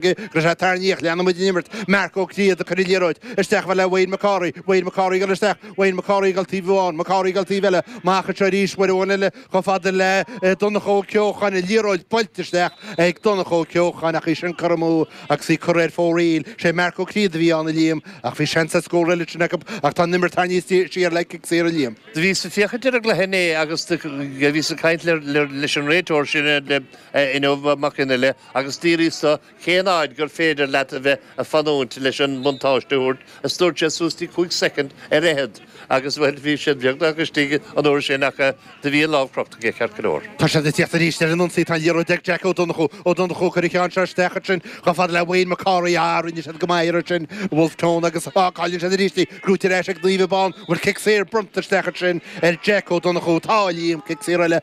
Go sé tarraingíodh leanfaidh muid an imirt. Mark Ó Críod ag cur an liathróid isteach chomh fada le Wayne Mac Cárthaigh. Wayne Mac Cárthaigh ag dul isteach. Wayne Mac Cárthaigh ag dul taobh amháin. Mac Cárthaigh ag dul taobh eile. Amach anseo arís uair amháin eile chomh fada le Donncha Ó Ceocháin. An liathróid buailte isteach ag Donncha Ó Ceocháin ach í sin curtha amú agus í curtha ar fóraoil. Sé Mark Ó Críod a bhí ann a Liam ach bhí seans ar scór eile ansin acu ach tá an imirt tarraingthe siar le cic saor a Liam. Do bhíos ag féachaint ar an gcluiche inné agus do bhíos ag caint leis an réiteoir sin inniu, Mac Fhionnaile, agus d'fhiafraíos de cén fhaid gur féidir leat a bheith a fanúint leis an mbuntáiste a thabhairt, is dúirt sé suas dtí cúig soicind ar fheichead agus bhuel bhí sin beagnach istigh an uair sin ach do bhí an lámh crochta aige ceart go leor. Tá siad ag teacht arís ar an ionsaí, tá an liathróid ag Jack Ó Donnchú, Ó Donnchú, ag cur an cheann seo isteach ansin chomh fada le Wayne Mac Cárthaigh, ah rinne siad go maith ansin Bhulf Tón agus ah cailleann siad arís í, gnóthaithe ar ais ag Naomh Abán, bhuel cic saor bronnta isteach ansin ar Jack Ó Donnchú, tá a Liam, cic saor eile.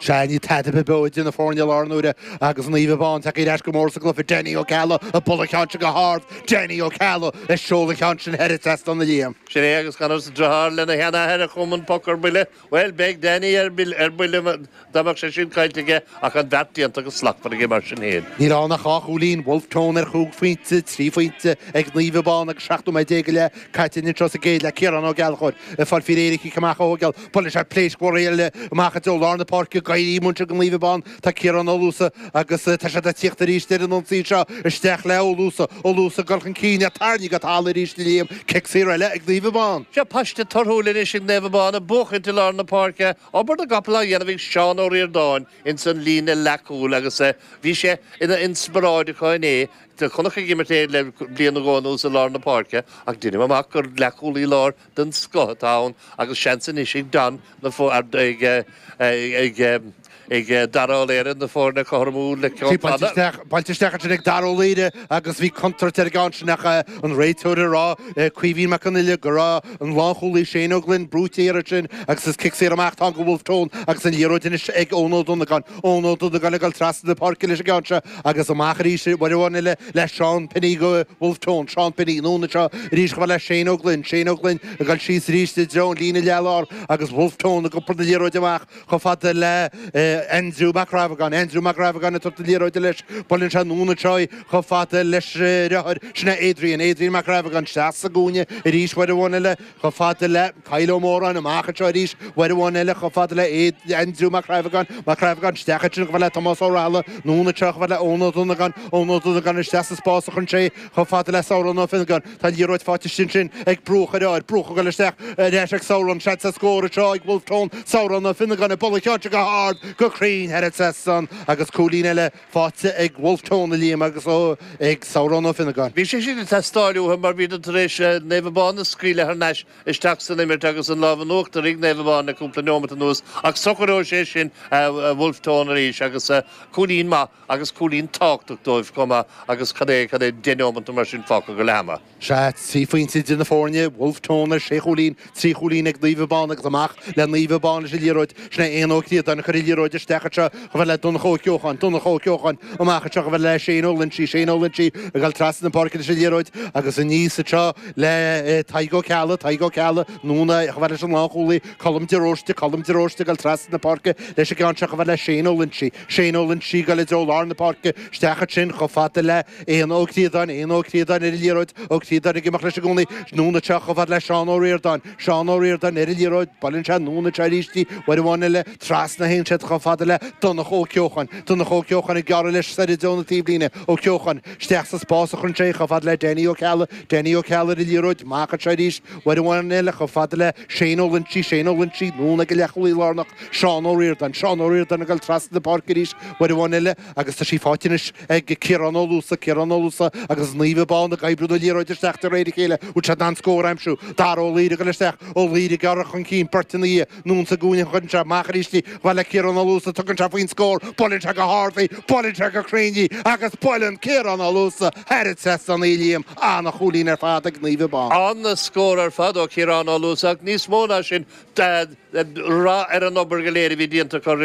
Sé níl tada beo idir na foirne i láthair na huaire agus Naomh Abán tagthaí ar ais go mór sa gcluiche Danny Ó Ceallaigh ag bualadh a cheann sin go hard. Danny Ó Ceallaigh ag seoladh a cheann sin thar an trasnán a Liam. Sin é agus Conor sa driotháir lena sheanathair a chum an poc ar buile. Bhuel bheadh Danny ar buile dá mbeadh sé sin caillte aige ach an beart déanta go slachtmhar aige mar sin fhéin. Níl ann ach dhá chúilín Bhulf Tón ar chúig phointe, trí phointe ag Naomh Abán agus 17 nóiméad go leith caite anseo sa gcéad leath. Ciarán Ó Gallchóir ag fáil faoi réir don chic amach ó Buaileann sé pléisc mhór eile amach i dtreo lár na páirce greim iontach go Naomh Abán. Tá Ciarán Ó Luasa agus tá siad ag tíocht arís ar an ionsaí seo. Isteach le Ó Luasa. Ó Luasa ag dul chun cinn é tarraingthe go talamh arís a Liam. Cic saor eile ag Naomh Abán. Seo paiste torthúil anois ag Naomh Abán ag buachaint i lár na páirce. Obair na gcapall á dhéanamh ag Seán Ó Ríordáin ins an líne leathcúil agus bhí sé ina inspioráid acu inné. Chonac ag imirt é le bliain nó dhó anuas i lár na páirce ach deinim amach gur leathcúlaí lár den scoth atá ann agus seans anois ag Don na ag Dara Ó Laoire na foirne a chothromú le ceann fada buailte isteach ansin ag Dara Ó Laoire agus bhí contúirt ar an gceann sin ach an réiteoir ag rá, Caoimhín Mac Fhionnaile, go raibh an lánchúlaí Shane Ó Gloinn brúite thiar ansin agus is cic saor amach atá ann go Bhulf Tón agus an liathróid anois ag Eoin Ó Donnagáin. Eoin Ó Donnagáin ag dul trasna na páirce leis an gceann seo agus amach arís uair amháin eile le Seán Penny go Bhulf Tón, Seán Penny, anonn anseo arís chomh fada le Shane Ó Gloinn, Shane Ó Gloinn ag dul síos arís i dtreo an líne leath-lár agus Bhulf Tón ag iompar na liathróide amach chomh fada le Aindriú Mac Crábhagáin, Aindriú Mac Crábhagáin ag tabhairt na liathróide leis, buaileann sé anonn anseo í chomh fada leis an deartháir, sin é Adrian, Adrian Mac Crábhagáin, síos sa gcúinne arís uair amháin eile. Chomh fada le Kyle Ó Móráin, amach anseo arís, uair amháin eile, chomh fada le Aindriú Mac Crábhagáin, Mac Crábhagáin, isteach ansin, chomh fada le Tomás Ó Raghallaigh, anonn anseo, chomh fada le Eoin Ó Donnagáin, Eoin Ó Donnagáin, isteach sa spás an cheann seo, chomh fada le Sarán Ó Fionnagáin, tá an liathróid fáite istigh ansin ag Brughach a dheartháir, Brughach ag goil isteach, ar ais ag Sarán, seans ar scór anseo ag Bhulf Tón, Sarán Ó Fionnagáin, ag bualadh a cheann seo go hard, go cruinn, thar an trasnán, agus cúilín eile, faighte ag Bhulf Tón a Liam agus ag Sarán Ó Fionnagáin. Bhí sé sin ag teastáil uathu mar bhíodar tar éis Naomh Abán a scaoileadh thar n-ais isteach san imirt agus an lámh in uachtar ag Naomh Abán le cúpla neomat anuas ach socróidh sé sin Bhulf Tón arís agus cúilín maith agus cúilín tábhachtach dóibh chomh maith agus cad é cad é deich neomat nó mar sin fágtha go leath ama. Sea trí phointe idir na foirne, Bhulf Tón ar sé chúilín, trí chúilín ag Naomh Abán agus amach le Naomh Abán leis an liathróid. Sin é Éanna Ó Críodáin a chuir an liathróid isteach anseo chomh fada le Donncha Ó Ceocháin, Donncha Ó Ceocháin amach anseo chomh fada le Shane Ó Loinsigh, Shane Ó Loinsigh ag dul trasna na páirce leis an liathróid agus aníos anseo le Tadhg Ó Ceallaigh, Tadhg Ó Ceallaigh anonn chomh fada leis an lánchúlaí Colm De Róiste, Colm De Róiste ag dul trasna na páirce leis an gceann seo chomh fada le Shane Ó Loinsigh. Shane Ó Loinsigh, ag dul i dtreo lár na páirce isteach ansin chomh fada le Éanna Ó Críodáin, Éanna Ó Críodáin ar an liathróid, Ó Críodáin ag imeacht leis i gcónaí, anonn anseo chomh fada le Seán Ó Ríordáin, Seán Ó Ríordáin ar an liathróid, buaileann sé anonn anseo arís í, uair amháin eile trasna a théann siad chomh fada le Donncha Ó Ceocháin, Donncha Ó Ceocháin ag gearradh leis soir i dtreo na taobhlíne, Ó Ceocháin isteach sa spás a chuireann sé chomh fada le Danny Ó Ceallaigh, Danny Ó Ceallaigh ar an liathróid, amach anseo arís, uair amháin eile chomh fada le Shane Ó Loinsigh, Shane Ó Loinsigh, anonn ag an leathchúlaí lárnach, Seán Ó Ríordáin. Seán Ó Ríordáin ag dul trasna an pháirc arís uair amháin eile agus tá sí faighte anois ag Ciarán Ó Luasa. Ciarán Ó Luasa agus Naomh Abán ag oibriú na liathróide isteach de réir a chéile. An bhfuil siad in ann scór a aimsiú. Dara Ó Laoire ag dul isteach. Ó Laoire ag amharc chun cinn. Beirt ina dhiaidh. Anonn sa gcúinne. Cuireann sé amach arís í. Chomh fada le Ciarán Ó Luasa. Tugann sé faoin scór. Buaileann sé go hard í. Buaileann sé go cruinn í. Agus buaileann Ciarán Ó Luasa thar an trasnán í, a Liam. Ana-chúilín ar fad ag Naomh Abán. Ana-scór ar fad ó Chiarán Ó Luasa ach níos mó ná sin toradh ar an obair go léir a bhí déanta acu roimhe.